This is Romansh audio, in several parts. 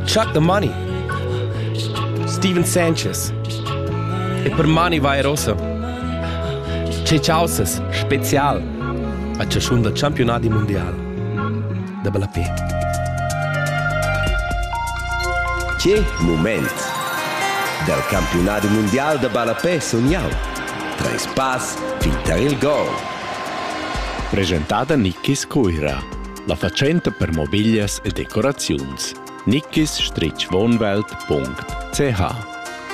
Chuck the Money. Steven Sanchez. E per mani vai rosa. Che causes special a ciascun dal campionati mondial da ballapet. Che moment! Dal campionati mondial da ballapet sun jau. Treis pass fin tar il gol. Presentada Nicky Scuira. La fatschenta per mobiglias e decoraziuns nickisstritschwohnwelt.ch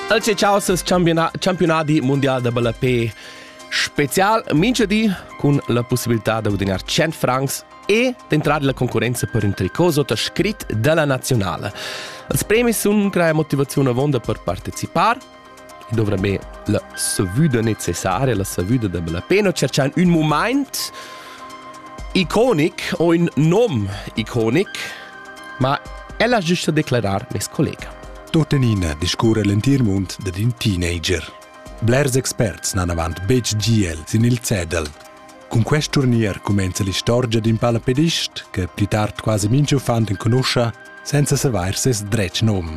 Elce Causes Campionati Mondial da Ballapé Spezial minchadi cun la possibilità da gudagnare 100 francs e d'entrare la concorrenza per un tricot sotto scrit della nazionale. Els premi sun crea motivazione avonda per partecipar in dovra be la savüda necessaria, la savüda da bella pena, cerchan un moment iconic o in nom iconic, ma ella giusta declarar mes collega. Tuttenina discurre l'entir mund dad in teenager. Blers experts n'han avant betg GL sin il cedel. Cun quest turnier cumenza l'istorgia d'in palapedist che pli tard quasi mincha uffant enconuscha senza savair ses dretg nom.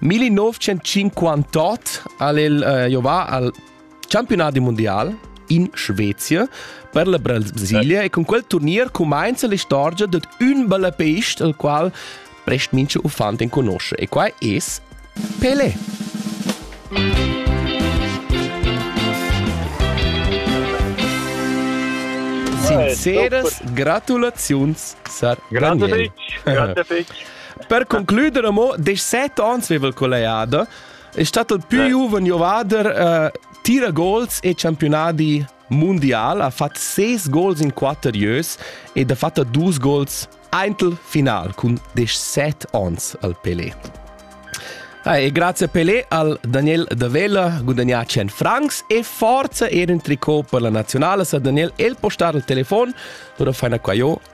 1958 al el uh, giovà al campionat mondial in Svezia per la Brasilia e con quel turnier comincia l'istorgia di un bel pist al qual prest mince uffant en conosce e qua es Pele. Sinceras gratulaziuns, Sir Grazie Daniel. Grazie Per concluder amo, 17 ans veva il collegiada, è stato il più giovane giovader uh, tira gols e campionati mondial, ha fatto 6 gols in 4 years ed ha fatto 2 gols eintel final con 17 ans al Pelé. Ah, e grazie a Pelé al Daniel Davella guadagna 100 francs e forza era un tricot per la nazionale sa Daniel el postar il telefon, ora fai una qua io